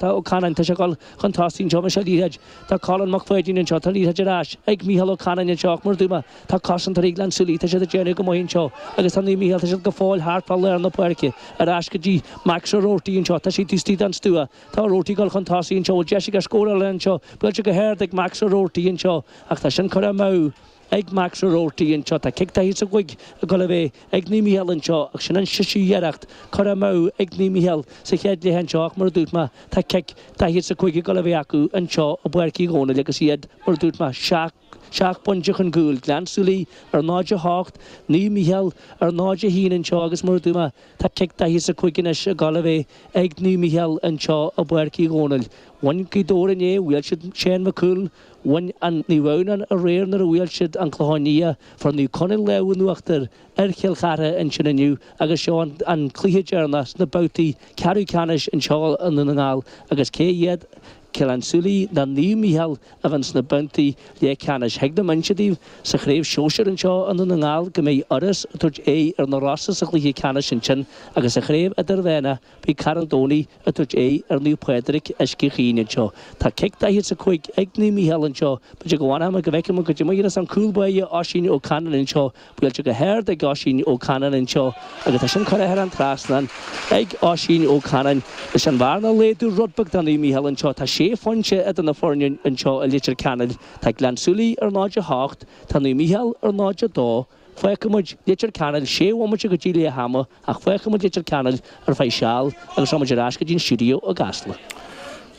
Tá Ó Canainn tá sé ag dul chun tosaigh anseo leis an liathróid. Tá Colin McFadden anseo, tá an liathróid ar ais ag Micheál Ó Canainn anseo ach mar a dúirt mé. Tá cosantóirí Ghleann tSúilí, tá siad ag déanamh go maith anseo agus tá Naomh Micheál, tá siad go fóill thart fá lár na páirce. Ar ais go dtí Max Ó Roarty anseo, tá sé taobh istigh den stua. Tá Ó Roarty ag dul chun tosaigh anseo, bhfuil deis aige scóráil anseo, buailte go hard ag Max Ó Roarty anseo ach tá sin curtha amú. Ag Max Ó Roarty anseo, tá cic daichead is a cúig ag dul a bheith ag Naomh Mícheál anseo, ach sin an séú iarracht curtha amú ag Naomh Mícheál sa chéad leath anseo ach mar a dúirt mé, tá cic daichead is a cúig ag dul a bheith acu anseo i bPáirc Uí Dhónaill agus iad, mar a dúirt mé, seacht, seacht bpointe chun gcúil, Gleann Súilí ar 0-8, Naomh Mícheál ar 0-1 anseo agus mar a dúirt mé, tá cic daichead is a cúig anois ag dul a bheith ag Naomh Mícheál anseo i bPáirc Uí Dhónaill. Bhain Gaoth Dobhair inné, bhuail siad Seán Mac Cumhaill, Bhain Naomh Adhamhnáin aréir nuair a bhuail siad An Clochán Liath, fuair Naomh Conaill an lámh in uachtar ar Chill Chartha ansin inniu agus seo an cluiche deireanach sna babhtaí ceathrú ceannais anseo i nDún na nGall agus cé iad Gleann tSúilí ná Naomh Micheál a bheidh sna babhtaí leathcheannais. Thig liom inse daoibh sa chraobh shóisir anseo i nDún na nGall go mbeidh Iorras ag tabhairt aghaidh ar na Rosa sa chluiche ceannais ansin agus sa chraobh idirmheána, Beidh Carn Domhnach ag tabhairt aghaidh ar Naomh Pádraig Uisce Chaoin anseo. Tá cic 45 ag Naomh Mícheál anseo. B'fhéidir go bhfanfadh mé go bhfeicfeadh mé goidé mar a dhéanas an cúl báire Oisín Ó Canainn anseo. Buailte go hard ag Oisín Ó Canainn anseo agus tá sin curtha thar an trasnán ag Oisín Ó Canainn leis an bhearna a laghdú rud beag do Naomh Mícheál anseo. Tá sé phointe idir na foirne anseo i Leitir Ceanainn. Tá Gleann tSúilí ar 0-8. Tá Naomh Mícheál ar 0-2. Fágfaimid Leitir Ceanainn sé bhomaite go dtí leath ama ach fágfaimid Leitir Ceanainn ar feadh seal agus gabhfaimid ar ais go dtí an stiúideo i gCasla.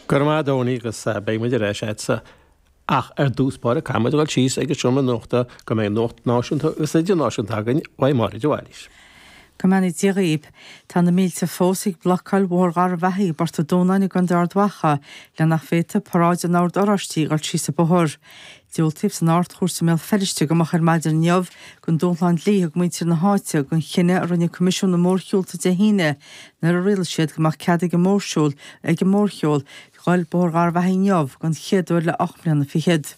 Go raibh maith agat a Dhónaill agus beidh muid ar ais agatsa ach ar dtús báire caithfimid dul síos ag an seomra nuachta go mbeidh nuacht náisiúnta agus idirnáisiúnta againn uaidh Máire de Bhailís. Go mbeannaí Dia dhaoibh. Tá na mílte fós ag blocáil Bhóthar Gharbhachaidh i bPort an Dúnáin i gContae Ard Mhacha le nach bhféadfadh paráid an Ord Oráistigh dul síos an bóthar. Diúltaíodh san Ard-Chúirt i mBéal Feirste go moch ar maidin inniu don dúshlán dlí a thug muintir na háite don chinneadh a rinne Coimisiún na Mórshiúlta Dé hAoine nuair a rialaigh siad go mbeadh cead ag an mórshiúl ag an mórshiúl dul Bóthar Gharbhachaidh inniu don chéad uair le ocht mbliana fichead.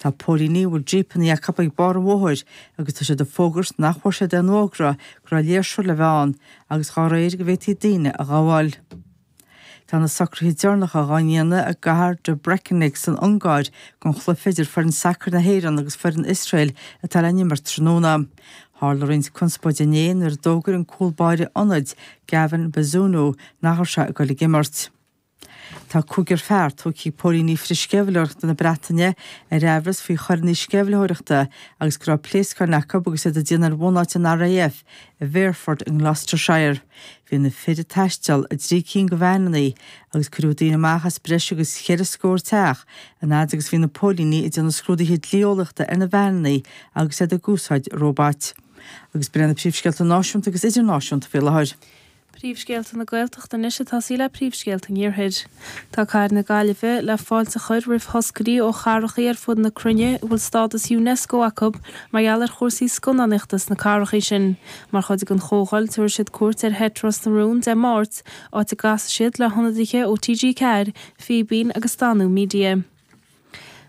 Tá póilíní a bhfuil jípeanna acu ag barr an bhóthair agus tá siad ag fógairt nach bhfuair siad aon fhógra go raibh léirsiú le bheith ann agus dá réir go bhféadfaí daoine a ghabháil. Tá na socruithe deireanacha dhá ndéanamh i gcathair Debrecen san Ungáir don chluiche idir foireann sacair na hÉireann agus foireann Iosrael atá le n-imirt tráthnóna. Tharla roinnt conspóide inné nuair a d'fhógair an cúl báire ionaid, Gavin Bazunu, nach raibh sé ag dul ag imirt. Tá cúigear fear tógtha ag póilíní frith-sceimhlitheoireachta na Breataine ar aimhreas faoi choireanna sceimhlitheoireachta agus go raibh pléascáin acu agus iad ag déanamh ar bhunáit an RAF I bhFairford i nGloucestershire, bhí na fir ag taisteal i dtrí cinn de veaineanna agus cuireadh daoine amach as breis agus cheithre scór teach an fhaid agus a bhí na póilíní ag déanamh scrúduithe dlí-eolaíochta ar na veaineanna agus iad ag úsáid róbait. Agus b'in iad na príomhscéalta náisiúnta agus idirnáisiúnta faoi láthair, Príomhscéalta na Gaeltachta anois ag tosaí le príomhscéalta an Iarthair. Tá cathair na Gaillimhe le fáilte a chur roimh thoscairí ó chathrachaí ar fud na cruinne a bhfuil stádas Unesco acu mar gheall ar chúrsaí scannánaíochta sna cathrachaí sin. Mar chuid den chomhdháil tabharfaidh siad cuairt ar sheit Ros na Rún Dé Máirt, áit a gcasfaidh siad le hionadaithe ó TG4, Fíbín agus Danú Media.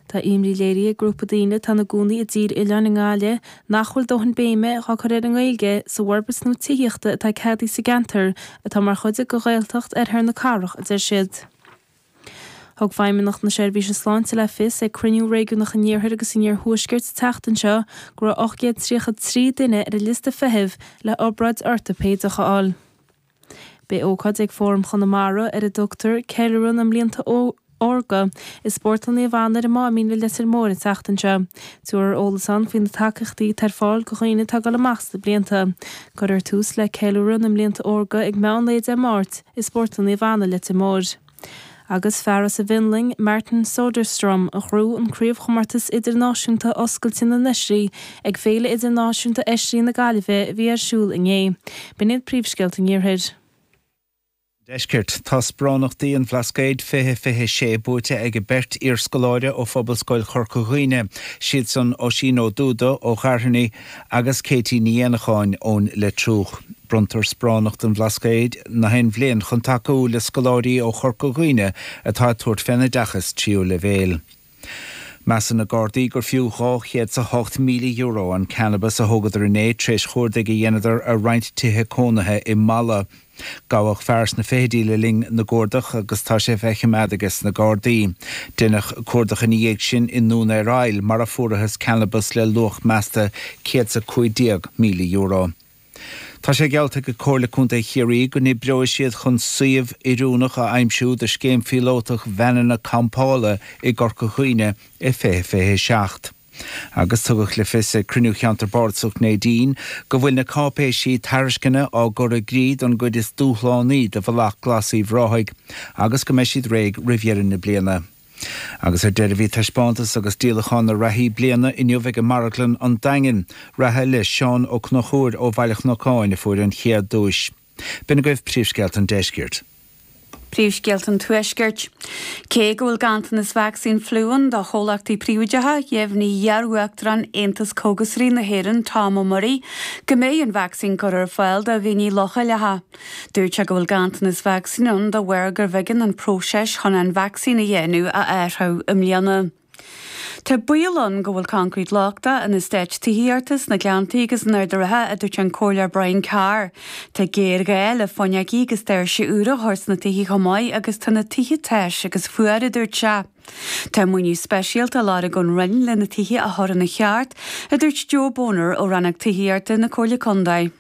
Tá imní léirithe ag grúpa daoine atá ina gcónaí i dTír Oileáin i nGaillimh nach bhfuil dóthain béime dhá cur ar an nGaeilge sa bhforbairt nua tithíochta atá ceadaithe sa gceantar atá mar chuid de Ghaeltacht Oirthear na Cathrach, a deir siad. Thug Feidhmeannacht na Seirbhíse Sláinte le fios ag cruinniú réigiúnach an iarthar agus an iarthuaisceart an tseachtain seo go raibh 833 duine ar an liosta feithimh le hobráid ortaipéideach a fháil. Beidh ócáid ag Fóram Chonamara ar a dtugtar 'Ceiliúradh na mBlianta Órga' i Spórtlann Naomh Anna ar an Máimín i Leitir Móir an tseachtain seo. Tabharfar eolas ann faoi na tacaíochtaí atá ar fáil do dhaoine atá ag dul amach sna blianta. Cuirfear tús le 'Ceiliúradh na mBlianta Órga' ag meán lae Dé Máirt i Spórtlann Naomh Anna, Leitir Móir. Agus fear as an bhFionlainn, Martin Soderstrom, a ghnóthaigh an craobhchomórtas idirnáisiúnta oscailte na n-oisrí ag Féile Idirnáisiúnta Oisrí na Gaillimhe a bhí ar siúl inné. B'in iad príomhscéalta an Iarthair. An Deiscirt. Tá Sparánachtaí an Bhlascaoid 2026 buaite aige beirt iarscoláire ó Phobalscoil Chorca Dhuibhne, siadsan Oisín Ó Dubhda ó Ghairfeanaigh, agus Katie Ní Éanacháin ón Leitriúch. Bronntar Sparánacht an Bhlascaoid nach aon bhliain chun tacú le scoláirí ó Chorca Dhuibhne atá ag tabhairt fén oideachas tríú leibhéil. Measann na Gardaí gur fiú dhá chéad 's a hocht míle euro an cannabas a thógadar inné tréis cuardaigh a dheineadar ar roinnt tithe cónaithe i Mala. Gabhadh fear sna fichidí le linn na gcuardach agus tá sé faoi choimeád aige sna Gardaí. Deineadh cuardach ina dhiaidh sin i nDún ar Aill mar a fuarathas cannabas le luach measta €115,000. Tá sé geallta ag Comhairle Contae Chiarraí go n-oibreoidh siad chun suíomh oiriúnach a aimsiú do scéim phíolótach veaineanna campála i gCorca Dhuibhne i 2027. Agus tugadh le fios ag cruinniú Cheantar Bardasach Neidín go bhfuil na cáipéisí tairisceana á gcur i gcrích don gcuid is dúshlánaí de Bhealach Glas Uíbh Ráthaigh agus go mbeidh siad réidh roimh dheireadh na bliana. Agus ar deireadh bhí taispeántas agus díolachán na reathaí bliana inniu ag an Marglann, An Daingean. Reatha le Seán Ó Conchúir ó Bhaile an Chnocáin a fuair an chéad duais. B'in agaibh príomhscéalta an deiscirt. Príomhscéalta an tuaiscirt. Cé go bhfuil ganntanas vacsaín fliú ann do chomhlachtaí príobháideacha, dheimhnigh iar-uachtarán Aontas Cógasairí na hÉireann, Tom Murray, go mbeidh an vacsaín curtha ar fáil do dhaoine leochaileacha. Dúirt sé go bhfuil ganntanas vacsaín ann de bharr gurbh éigean an próiseas chun an vacsaín a dhéanamh a athrú i mbliana. Tá baol ann go bhfuil concrete lochtach in eastáit tithíochta sna Gleanntaí agus in Ard a' Rátha, a dúirt an Comhairleoir Brian Carr. Tá géarghá le fuinneogaí agus doirse úra a chur sna tithe chomh maith agus tá na tithe tais agus fuar, a dúirt sé. Tá maoiniú speisialta á lorg ón Roinn le na tithe a chur ina cheart, a dúirt Joe Boner ó Rannóg Tithíochta na Comhairle Contae.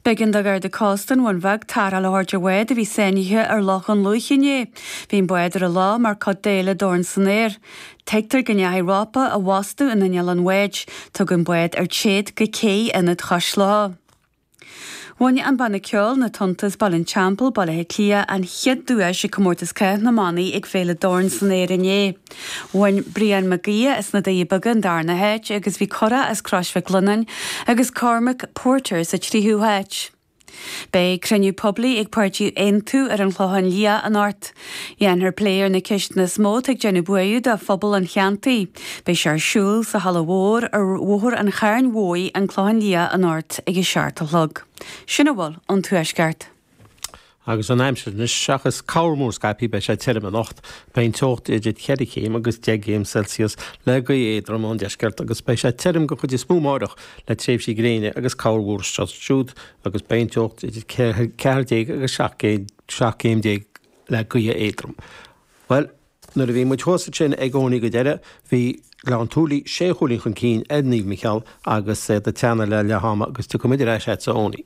B'éigean do Gharda Cósta an Bhun Bheag tarrtháil a thabhairt ar bhád a bhí sáinnithe ar Loch an Lúich inné. Bhí an bád ar an loch mar chuid d'fhéile Dorn San Aer. Tuigtear go ndeachaigh rópa i bhfostú in inneall an bháid. Tugadh an bád ar téad go cé i Ionad Chois Locha. Bhain an banna ceoil Na Tonnta as, Baile an Teampaill, Baile Átha Cliath, an chéad duais ag Comórtas Cath na mBannaí ag féile Dorn San Aer inné. Bhain Brian Mac Aodha as na Cealla Beaga an darna háit agus bhí Curadh as Crois Mhic Lionnáin agus Cormac Porter sa tríú háit. Beidh cruinniú poiblí ag páirtí Aontú ar an Chlochán Liath anocht. Dhéanfar plé ar na ceisteanna is mó atá ag déanamh buartha do phobal an cheantair. Beidh sé ar siúl sa Halla Mhór ar Bhóthar an Chairn Mhóir, An Clochán Liath anocht ag a seacht a chlog. Sin a bhfuil ón Tuaisceart. Agus an aimsir anois, seachas corr-mhúr scaipthe, beidh sé tirim anocht. Beidh an teocht idir ceithre chéim agus deich gcéim Celsius, le gaoth éadrom ón deisceart, agus beidh sé tirim den chuid is mó amáireach, le tréimhsí gréine agus corr-mhúr anseo is ansiúd, agus beidh an teocht idir ceathair déag agus seacht gcéim déag, le gaoth éadrom. Nuair a bhí muid agatsa ansin a Owenie go deireadh, bhí Gleann tSúilí sé chúilín chun cinn ar Naomh Micheál agus é ag teannadh le leath ama agus tiocfaidh muid ar ais agatsa Owenie.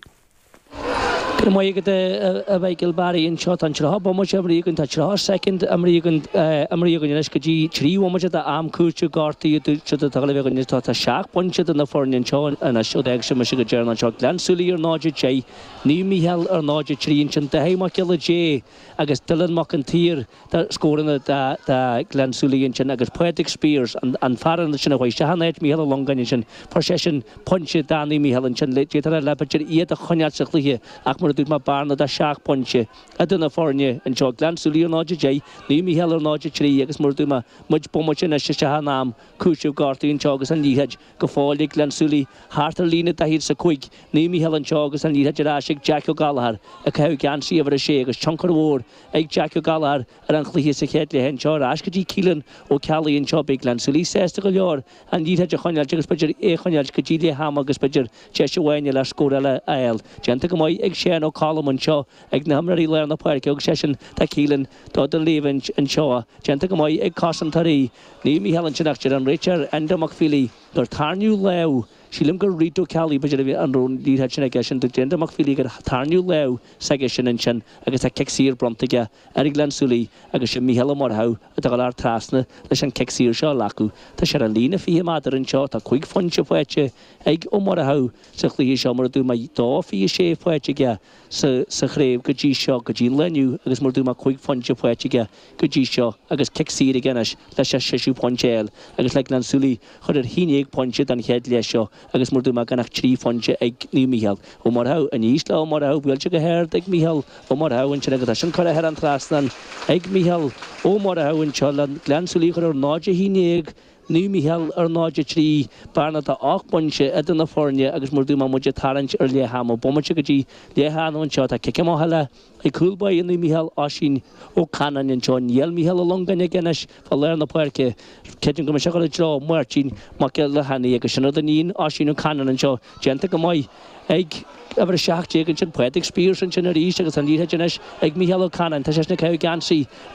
Go raibh maith agat a Mhichael Barry, anseo tá an tríocha bomaite á mbrú againn, tá trí cheathair soicind á mbrú á mbrú againn anois go dtí trí bhomaite d'am cúitimh gortaithe siúd atá agaibh anois tá tá seacht bpointe idir na foirne anseo anois ó d'fhág mise go deireanach anseo Gleann tSúilí ar 0-10 Naomh Micheál ar 0-3 ansin Daithí Mac Giolla Dé agus Dylan Mac an tSaoir Tá scóranna do Ghleann tSúilí ansin agus Padraig Speers, an fear ansin a chuaigh isteach in áit Mhícheál Ó Longáin ansin, fuair seisean pointe, Danny Mhícheáil ansin, d'fhéadfadh a leithéid b'fhéidir iad a choinneáil sa chluiche ach mar a dúirt mé, bearna de sheacht bpointe idir na foirne anseo, Gleann tSúilí ar 0-10, Naomh Mícheál ar 0-3 agus mar a dúirt mé, muid bomaite anois isteach in am cúitimh gortaithe anseo agus an liathróid go fóill ag Gleann tSúilí thart ar líne daichead is a cúig, Naomh Mícheál anseo agus an liathróid ar ais ag Jeaic Ó Gallchóir ag caitheamh geansaí uimhir a sé agus tionchar mhór ag Jack Ó Galláir ar an chluiche sa chéad leath anseo ar ais go dtí Keelan Ó Ceallaigh anseo Beidh Gleann tSúilí sásta go leor an liathróid a choinneáilt agus b'fhéidir é a choinneáilt go dtí leath ama agus b'fhéidir deis amháin eile ar scór eile a fháil déanta go maith ag Seán Ó Colm anseo ag na himreoirí lár na páirce tugann seisean do Keelan dó don léamh anseo déanta go maith ag cosantóirí Naomh Mícheál ansin ach deir an réiteoir Enda Mac Philí gur tarraingíodh lámh Sílim gur rí Dubh Ceallaigh b'fhéidir a bhí an rún níor fhad sin aige sin de réir Enda Mac Philí gur tarraingíodh lámh s'aigesean ansin agus tá cic saor bronnta aige ar Ghleann tSúilí agus is é Mícheál Ó Murchadha atá ag gabháil trasna leis an cic saor seo a ghlacadh. Tá sé ar an líne fiche meadar anseo, tá cúig phointe faighte ag Ó Murchadha sa chluiche seo mar a dúirt mé dó fiche sé faighte aige sa chraobh go dtí seo, go dtí an lá inniu agus mar a dúirt mé cúig phointe faighte aige go dtí seo agus cic saor aige anois leis an séú pointe a fháil agus le Gleann tSúilí a chur ar aon déag pointe don chéad leath seo agus mar a dúirt mé gan ach trí phointe ag Naomh Mícheál Ó Murchadha. Aníos le Ó Murchadha buailte go hard ag Mícheál Ó Murchadha ansin agus é sin curtha thar an trasnán ag Mícheál Ó Murchadha anseo le Gleann tSúilí a chur ar 0-11 Naomh Mícheál ar 0, 3, bearna de 8 bpointe idir na foirne agus mar a dúirt mé muid ag tarraingt ar leath ama bomaite go dtí leath ama anseo. Tá cic amach eile ag cúl báire Naomh Mícheál, Oisín Ó Canainn, anseo. Tá Mícheál Ó Longáin aige anois fá lár na páirce. Creidim go mbeidh sé ag dul i dtreo Máirtín Mac Giolla Bhrádaigh agus sin rud a níonn Oisín Ó Canainn anseo. Déanta go maith ag uimhir 17 ansin, Padraig Spiers, ansin arís agus an liathróid anois ag Mícheál Ó Canainn. Tá seisean ag caitheamh geansaí uimhir a.